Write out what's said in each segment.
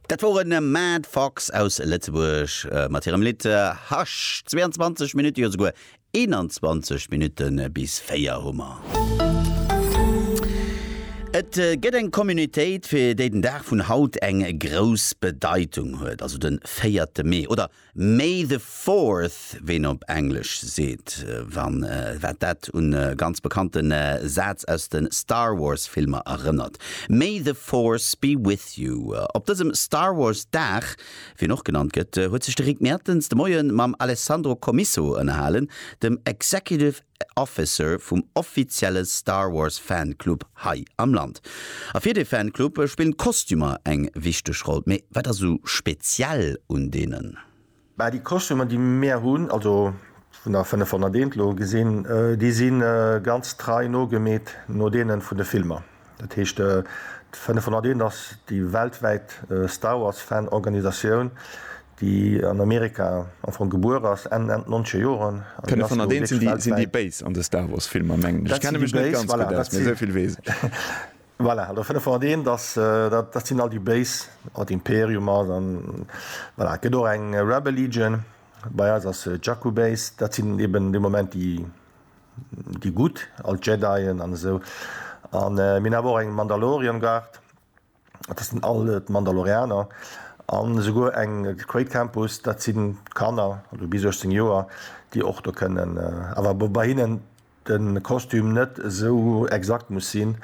Dat woren Mad Fox aus Lëtzebuerg mat hirem Lidd Hush. 22 Minutte, jo souguer 21 Minutte bis 4 hu mer. Et gëtt eng Communautéit, fir déi den Dag vun haut eng grouss Bedeitung huet, also de véierte Mee, oder May the Fourth, wéi een op Englesch seet, wann wat dat un e ganz bekannte Saz aus de Star Wars Filmer erënnert. May the Force be with you. Op dësem Star Wars Dag, wéi en och genannt gëtt, huet sech de Rick Mertens de Moie mam Alessandro Comisso ënnerhalen, dem Executive. Officer vum offizielle Star Wars Fanclub hei am Land. A fir dee Fanclub spillen d'Kostümer eng wichteg Roll. Mee wat ass esou speziell un deenen? Bah, déi Kostümer déi mir hunn, also vun der 501 elo gesinn, déi si ganz trei nogemeet no deene vun de Filmer. Dat heescht, d'Fënnefhonnerteenent ass déi weltwäit Star Wars Fan Organisatioun, déi an Amerika am Fong gebuer ass, Enn Enn d'nonzege Joren. D'Fënnefhonnerteenent sinn déi, sinn déi Béis an de Star Wars Filmer mengen ech. Ech kenne mech net ganz gutt aus, mee esou vill weess ech. Voilà, also Fënnefhonnerteenent ass, dat sinn all déi Béis, an d'Imperium ass an voilà. Et gëtt och eng Rebel Legion, bei eis ass et d'Jakku Base, dat sinn eben de Moment déi. Déi Gutt, all d'Jedien an esou. An mir hunn awer och eng Mandalorian Guard, dat ass all d'Mandalorianer. An esouguer eng Great Campus, dat sinn d'Kanner, also bis 18 Joer, déi och do kënnen, awer wou bei hinnen de Kostüm net esou exakt muss sinn.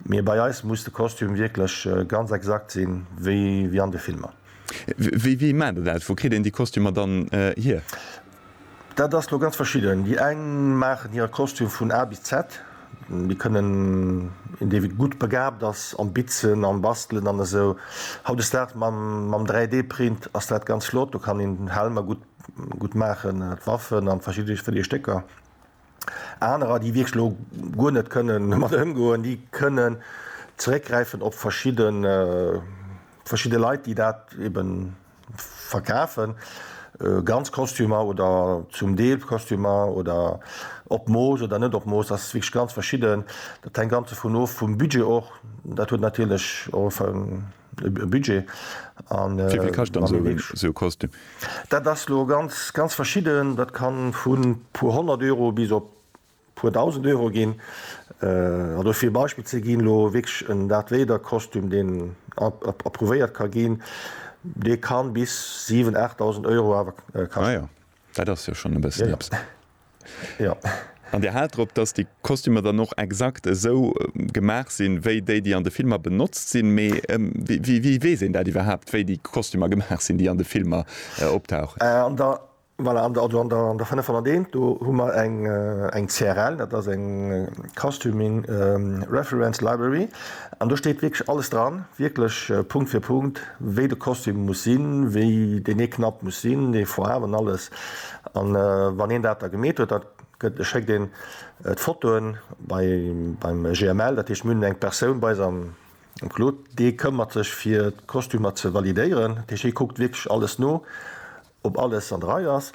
Mee bei eis muss de Kostüm wierklech ganz exakt sinn, wéi an de Filmer. Wéi maacht Dir dat? Wou kritt een déi Kostümer dann hier? Dat ass lo ganz verschidden. Déi eng maachen hire Kostüm vun A bis Z. Déi kënnen, een dee wierklech gutt begaabt ass am Bitzen, am Bastelen an esou, hautdesdaags mam 3D Print ass dat ganz flott, do kann een Helmer gutt maachen, Waffen a verschidde Stécker. Anerer, déi wierklech elo guer net kënnen domat ëmgoen, déi kënnen zeréckgräifen op verschidde, verschidde Leit, déi dat ebe verkafen, ganz Kostümer oder zum Deel Kostümer oder op Mooss oder net op Mooss. Dat ass wierklech ganz verschidden. Dat hänkt ganz dovun of, vum Budget och. Dat huet natierlech och e. e Budget an wéi vill kascht dann sou en sou Kostüm? Dat ass lo ganz ganz verschidden, dat kann vun puer 100 Euro bis op puer 1000 Euro ginn. An do fir e Beispill ze ginn, lo wierklech en Darth Vader Kostüm deen approuvéiert ka ginn, dee kann bis 7, 8000 Euro awer kaschten. Ah jo, dat ass jo schonn e bëssen eppes. Jo. An Dir haalt drop, dass déi Kostümer dann och exakt esou gemaach sinn, wéi déi, déi an de Filmer benotzt sinn. Mee wéi weess een dat iwwerhaapt, wéi déi Kostümer gemaach sinn, déi an de Filmer optauchen? An der, voilà, an der, also an der 501, do hu mer eng, eng CRL, dat ass eng Costuming Reference Library, an do steet wierklech alles dran, wierklech Punkt fir Punkt, wéi de Kostüm muss sinn, wéi deen ee Knapp muss sinn, dee Foarwen, alles. An wann een dat da gemeet huet, da schéckt een d'Fotoen beim GML, dat heescht mir hunn eng Persoun bei eis am Claude, dee këmmert sech fir d'Kostümer ze validéieren, dat heescht hie kuckt wierklech alles no, ob alles an der Rei ass.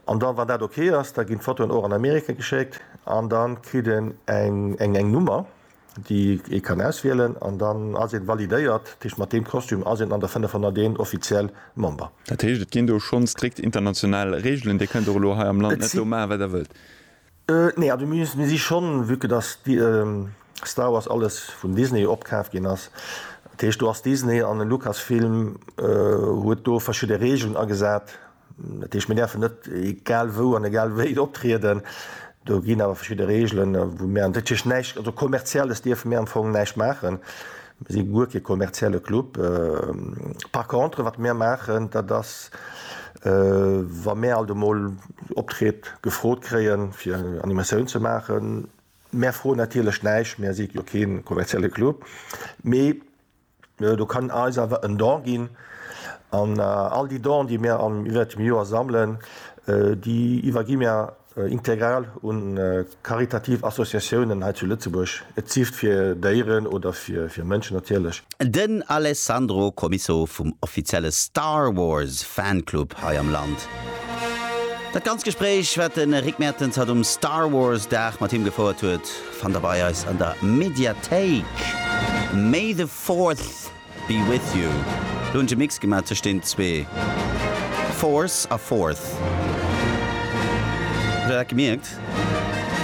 An da wann dat ok ass, da ginn d'Fotoen och an Amerika geschéckt an da kritt een eng Nummer, déi ee kann auswielen an dann ass een validéiert, dat heescht mat deem Kostüm ass een an der 501 offiziell Member. Dat heescht et ginn do schonn strikt international Reegelen, Dir kënnt och elo hei am Land net do maachen wat der wëllt? Nee, also mir si schonn, vue que dass Star Wars alles vun Disney opkaaft ginn ass, dat heescht do ass Disney an den Lucasfilm huet do verschidde Reegelen agesat, Dat heescht, mir däerfen net egal wou an egal wéi optrieden. Do ginn awer verschidde Reegelen, wou mir, dat heescht näischt, also Kommerzielles dierfe mir am Fong näischt maachen. Mir si guer kee kommerzielle Club. Par contre, wat mir maachen, dat ass, wa mir alt emol Optritt gefrot kréien, fir Animatioun ze maachen, mir froen natierlech näischt, mir si jo kee kommerzielle Club, mee Do kann eis awer en Don ginn. An all déi Donen, déi mir iwwert dem Joer sammelen, déi iwwergi mir integral u karitativ Associatiounen hei zu Lëtzebuerg, sief et fir Déieren oder fir Mënschen natierlech. Den Alessandro Comiso vum offizielle Star Wars Fanclub hei am Land. Dat ganzt Gespréich, wat de Rick Mertens hatt um Star Wars Dag mat him gefouert huet, Fannt der bei eis an der Mediathéik. May the Fourth be with you. Lo hunn ech e Mix gemaat tëscht den zwee Force a Fourth. Hutt der dat gemierkt?